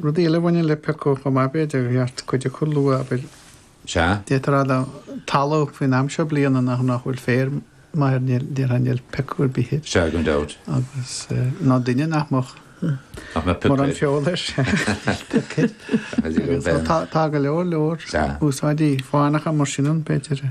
Rudaí eile a bhaineann le peaca chomh maith, b'fhéidir, ar cheart cuid acu a lua, abair, Sea. d'fhéadfá a rá do thalamh faoin am seo bliana nach bhfuil féar maith air, níl, déarfainn, níl peaca ar bith air. Sea, gan dabht. Agus, nó duine nach mbeadh. nach mbeadh peaca air. Mórán feola air, sea, níl peaca air. Tá go leor, leor úsáidí fánacha mar sin ann, b'fhéidir.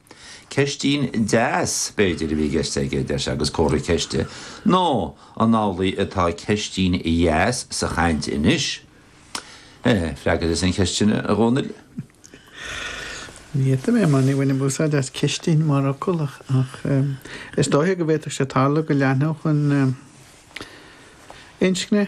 Ceistín deas, b'fhéidir, a bhí i gceist aige, deir sé, agus comhartha ceiste. Nó an amhlaidh atá ceistín dheas sa chaint anois? Eh, freagair thusa an cheistín, a Dhónaill. Ní fhéadfadh mé, mar ní bhainim úsáid as ceistín mar fhocal, ach is dóiche go bhféadfadh sé tarlú go leanfadh an inscne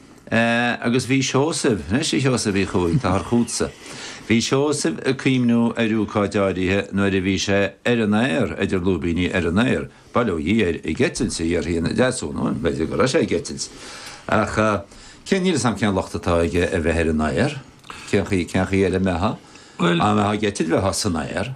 Agus bhí Seosamh, anois a Sheosaimh Uí Chuaig, táthar chughatsa. Bhí Seosamh ag cuimhniú ar ócáid áirithe nuair a bhí sé ar an aer, idir lúibíní, ar an aer, bail ó Dhia air, ag eitilt, a dhéarfaí ina Deasúna, bhuel, b'fhéidir go raibh sé ag eitilt. Ach cén, níl 'fhios a'm cén locht atá aige ar bheith ar an aer, cén chaoi, cén chaoi eile a mbeadh, a mbeifeá ag eitilt, bheifeá san aer.